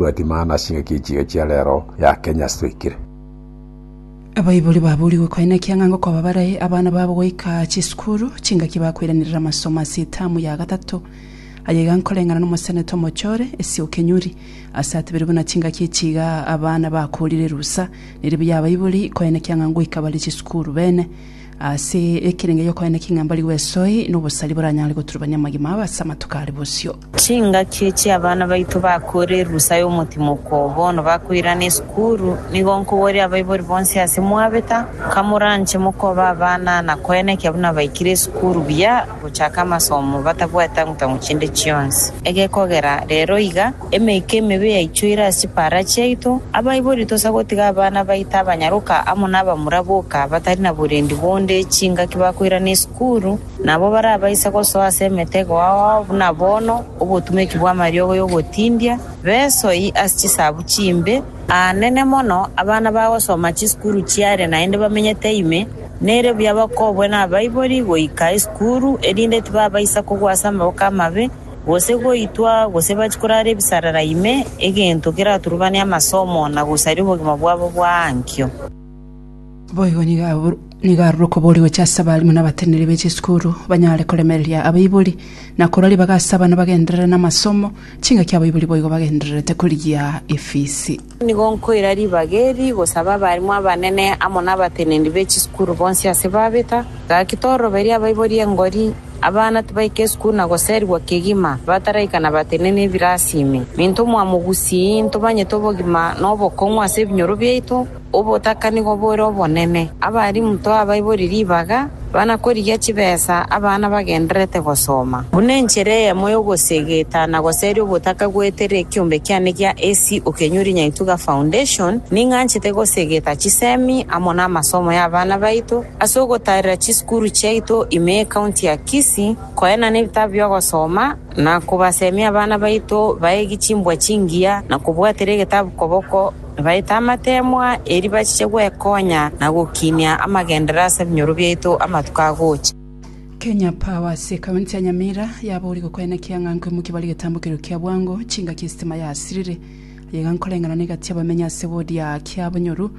Tobwati maana ase engaki ye chiga chia rero ya Kenya ase toikire. Abaibori baburigwe koe naki ang'e ngokoba barae abana babo goika chisukuru, chingaki bakoiranerera amasomo ase etamu ya gatato. Aya iga nkoreng'ana nomoseneta omochore, Essie Okenyuri, ase atebire buna chingaki echi iga abana bakoorire erusa, neri buya abaibori koe naki ang'e ngoika bare chisukuru bene. Ase ekerenge gi'okoena king'ambari gw'esoe nobosari boranyare goturubania amagima abo ase amatuko are bosio. Chingaki echi abana baito bakoorire erusa y'omotimoko bono bakoirana esukuru, nigo nkoboria abaibori bonsi ase mwabeta, kamoranche mokoba abana na koena ekiya buna baikire esukuru buya gochaka amasomo batabwati tang'u-tang'u chinde chionsi. Egekogera rero iga, Emeika emebe yaichoire ase eparach yaito, abaibori tosa gotiga abana baito abanyaroka amo nabamura boka batari na borendi bonde chingaki bakoirana esukuru, na abwo barabaise gosoa ase emetego ao buna bono obotumeki bw'amariogo y'ogotindia besoi ase chisabu chimbe. Aanene mono abana bagosoma chisukuru chiare naende bamenyete ime, nere buya bakobwe nabaibori goika esukuru, erinde tibabaisa kogwa ase amaboko amabe, gose goitwa, gose bache korara ebisarara ime, egento keraturubane amasomo na gosaria obogima bwabo bwa ankio. Boigo nigo abwo- nigo arure okobooria gochia ase abaalimu na abateneneri be chisukuru, banyare koremereria abaibori, na korwa ribaga ase abana bagenderere namasomo, chingaki abaibori boigo bagendererete korigia efisi. Nigo nkoira ribaga eri gosaba abarimu abanene amo nabatenenedi be chisukuru bonsi ase babeta. Gaki toroberie abaibori engori, abana tibaike esukuru na goserigwa kegima bataraika na batenene ebirasi ime. Minto omwamo gusii, ntobanyete obogima na obokong'u ase ebinyoro biaito, obotaka nigo bore obonene. Abarimu toa abaibori ribaga. Bana korigia chibesa abana bagendererete gosoma. Buna enchera eyemo y'ogosegeta na goseria ogotaka goetera ekiombe kiane gia AC Okenyori Nyaituga Foundation, ning'anchete gosegeta chisemi amo n'amasomo y'abana baito ase ogotaarera chisukuru chiaito ime y'Ekaunti ya Kisii, koena nebitabu bi'ogosoma, na kobasemia abana baito baegi chimbwa chingiya na kobwatera egetabu koboko. Nibaete amateemwa eri bachiche gwekonya na gokinia amagenderero ase ebinyoro biaito amatuko agocha. Kenya Power ase County ya Nyamira yaboria gokoena kiang'anko imo kebare egetambokerero kia bwango chingaki esitima yasirire aye iga nkoreng'ana na egati abamenyi ase ward ya Kiabonyoru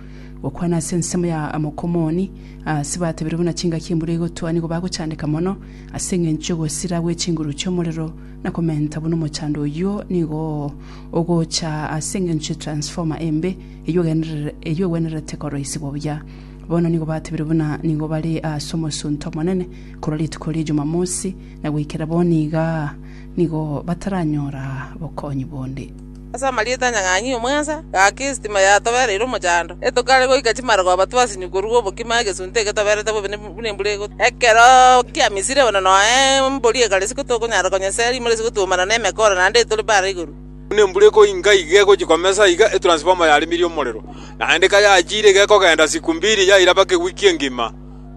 gokwana ase ensemo ya Amokomoni ase batebirie buna chingaki embura egotoa nigo bagochandeka mono ase engencho yogosira gwechinguru chiomorero na komenta buna omochando oyio nigo ogocha ase engencho ye transformer embe eyio egenderere eyio egwenerete koroisigwa buya. Bono nigo batebire buna nigo bare aase omosunte omonene korwa rituko rie Jumamosi na goikera bono iga nigo bataranyora bokonyi bonde. Ase amarieta anyang'anyi omwensa, gaki esitima yatobereire omochando, etogare goika chimarogoba twasinywe korwa obokima egesunte egetoberete bobe ne. buna embura egotwa. Ekero kiamisire bono noe embori egare isiko tokonyara konyesera rimoro isiko twaumana nemekooro naende etore bare igoro. Buna embura ekoinga iga egochia komesa iga etransfoma yarimirie omorero, naende kayachiire iga ekogenda siku mbiri yairabake ewiki engima.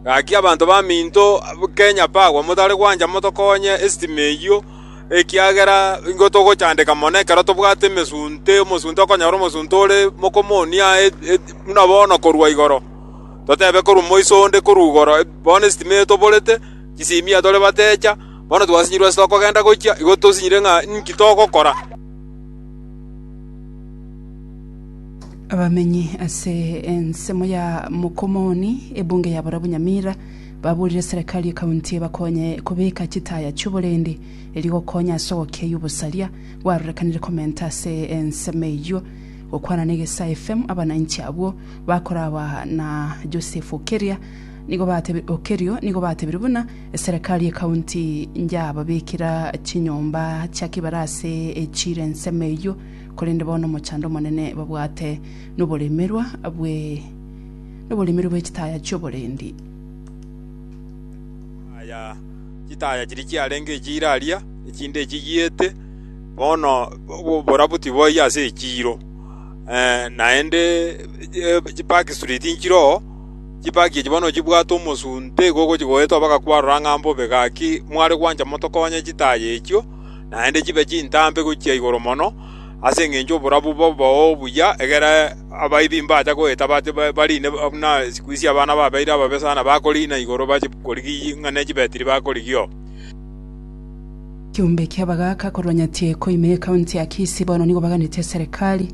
Gaki abanto baminto Kenya Power motare gwancha motokonye esitima eyio ekiagera nigo togochandeka mono ekero tobwate emesunte, omosunte okonyora omosunte ore mokomo onia buna bono korwa igoro. Totebe korwa moiso onde korwa igoro, bono esitima eye toborete, chisimia tore bateecha, bono twasinyirwe ase tokogenda gochia, igo tosinyire ng'a ninki togokora.” Abamenyi ase ensemo ya Mokomoni, ebunge ya borabwo Nyamira, baburire serikali y'ekaunti ebakonye kobeka chitaya chi'oborendi erio gokonya ase ogokiayia obosaria bwarorekanire komenta ase ensemo eyio. Gokwana negesae FM abananchi abwo bakoragwa na Joseph Okeria nigo batebire Okerio nigo batebire buna eserekari ekaunti njababekera chinyomba chia kibarase echire ensemo eyio korende bono omochando omonene babwate noboremerwa bwe noboremerwa bwechitaya chioborendi. Aya chitaya chiria chiarenge echiiro aria, echinde echigiete, bono oborabu tiboiyo ase echiiro. Naende chipaki street nchire oo, chipaki echio bono nochibwate omosunte igo ogochigoeta oo mpaka kwarora ng'a mbobe. Gaki mware gwancha motokonye chitaya echio, naende chibe chintambe gochia igoro mono. Ase engencho y'oborabu bwao obuya, egera abaibi mbacha goeta bariine buna chikwi chi'abana babeire ababe sana bakoriina igoro bachikorigie ng'a ne chibetiri bakorigia oo. Ekeombe ki'abagaaka korwa Nyatieko ime y'Ekaunti ya Kisii bono nigo baganetie eserekari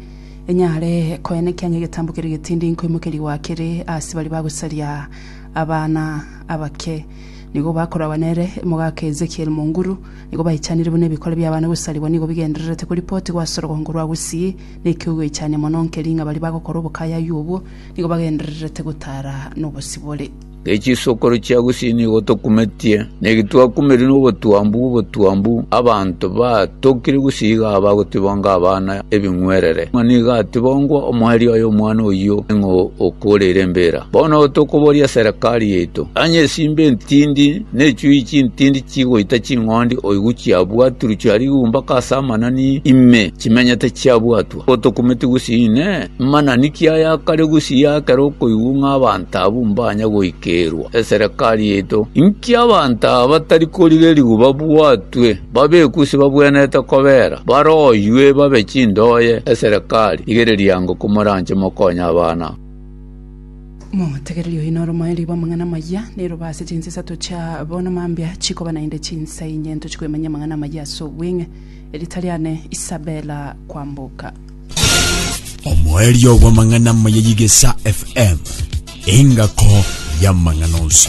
enyare koya nekianya egetambo keria getindi nkoimokeria gwa kere ase baria bagosaria abana abake. Nigo bakoragwa nere Omogaka Ezekiel Munguru, Nigo baichanire buna ebikore bi'abana gosarigwa nigo bigendererete koripotigwa ase orogongo rwa Gusii, na ekio goichania mono nkeri ng'a baria bagokora obokayaywa obwo nigo bagendererete gotara nobosibore. Echisokoro chia Gusii nigo tokumetie, na eki twakumerie nobotwambu bw'obotwambu, abanto batokire Gusii iga bagotibonga abana ebing'werere, ng'a nigo atibongwa omoerio oye omwana oyio ng'a okoreire embira. Bono tokoboria serekari yaito, Onye esimba entindi, Nechuuyi chintindi chigoita ching'ondi oigwe chiabua turu chia rigumba ka ase amanani ime chimenyete chiabwatwa otokumeti gusii inee, manani ki aya akare gusii akera okoigwa ng'a abanto abwo mbanya goikerwa eserekari yaito? Inki abanto aba batari korigereria babwatwe, babekwe gusii babwenerete kobera, baroywe babe chindoye eserekari? Rigereria ango komoranche mokonye abana. Motegereri oyo noro moerio bw'amang'ana amayia, nerobe ase chinsa isato chia bono mambia chikoba naende chinsa inye ntoche koyemanyia amang'ana amayia ase obweng'e, erita riane Isabella Kwamboka. Omoerio bw'amang'ana amaya y'Igesa FM, engako y'amang'ana onsi.